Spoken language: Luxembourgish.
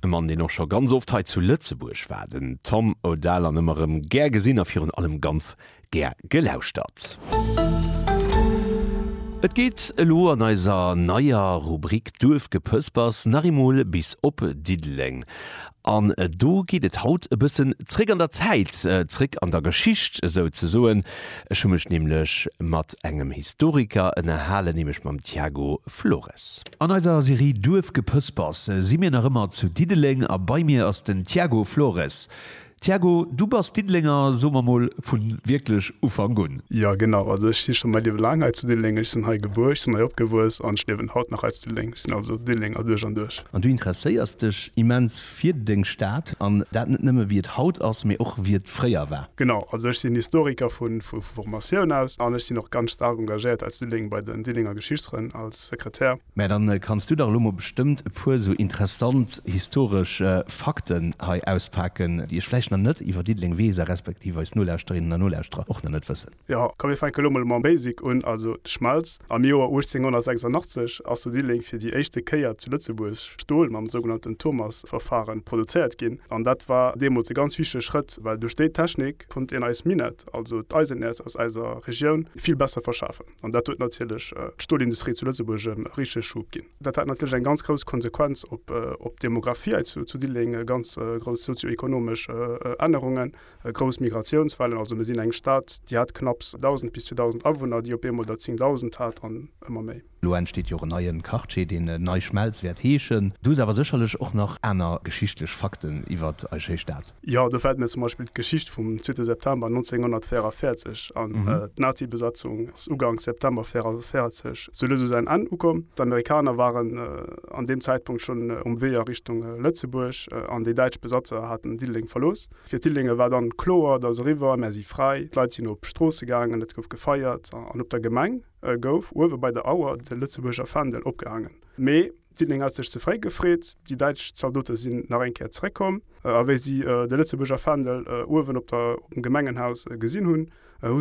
E Mann, deen och scho ganz oft hei zu Lëtzebuerg war, den Tom Odell, an ëmmer erëm gär gesinn a virun allem ganz gär gelauschtert. Et geet elo an eiser neier Rubrik Duerfgepëspers nach eemol bis op Diddeleng. An do geet et haut e bëssen zréck an der Zäit, zréck an der Geschicht esou ze soen. Ech hu mech nämlech mat engem Historiker ënnerhalen, nämlech mam Tiago Flores. An eiser Serie Duerfgepëspers si mir nach ëmmer zu Diddeleng a bei mir ass den Tiago Flores. Tiago, du bass Diddelenger, soe mer mol vu wierklech Ufank un. Jo genau, also ech si scho mäi Liewe laang hei zu Diddeleng. Ech sinn hei gebuer, ech sinn hei opgewuess an ech liewen haut nach hei zu Diddeleng. Ech sinn also Diddelenger duerch an duerch. An du interesséiers dech immens fir deng Stad, an dat net nëmme wéi et haut ass, mee och wéi et fréier war. Genau, also ech sinn Historiker vu Formatioun aus an ech sinn och ganz staark engagéiert aus Diddeleng bei den Diddelenger Geschichtsfrënn als Sekretär. Mä dann kanns du dach elo mol bestëmmt e puer esou interessant historesch Fakten hei auspaken, déi ech vläicht nach net iwwer Diddeleng weess a respektiv eis Nolauschterinnen a Nolauschterer och nach net wëssen. Jo, komm mir fänke lo mol mam Basic un, also d'Schmelz. Am Joer 1886 ass zu Diddeleng fir déi éischte Kéier zu Lëtzebuerg Stol mam sougenannten Thomas-Verfahren produzéiert ginn. An dat war deemools e ganz wichtege Schrëtt, well duerch déi Technik konnt een eis Minett, also d'Eisenäerz aus eiser Regioun, vill besser verschafen. An dat huet natierlech d'Stolindustrie zu Lëtzebuerg e richtege Schub ginn. Dat hat natierlech eng ganz grouss Konsequenz op d'Demographie hei zu Diddeleng, ganz grouss sozio-ekonomesch Ännerungen. Grouss Migratiounswellen, also mir sinn eng Stad, déi hat knapps 1.000 bis 2.000 Awunner, déi op eemol der 10.000 hat an ëmmer méi. Elo entsteet jo och en neien Quartier, deen Nei Schmelz wäert heeschen. Do si awer sécherlech och nach aner geschichtlech Fakten iwwer eis schéi Stad. Jo, do fält mir zum Beispill d'Geschicht vum zweete September 1944 an. D'Nazi-Besatzung ass uganks September 1944 zu Lëss u säin Enn ukomm. D'Amerikaner waren an deem Zäitpunkt schonn um Wee a Richtung Lëtzebuerg an déi däitsch Besatzer haten Diddeleng verlooss. Fir d'Dillinger war dann kloer, et ass eriwwer, mär si fräi. D'Leit sinn op d'Stroosse gaangen, et gouf gefeiert an op der Gemeng gouf uewe bei der Auer de Lëtzebuerger Fändel opgehaangen. Mee d'Dilling hat sech ze fréi gefreet. Déi däitsch Zaldote sinn nach eng Kéier zeréckkomm a wéi si de Lëtzebuerger Fändel uewen op dem Gemengenhaus gesinn hunn, hu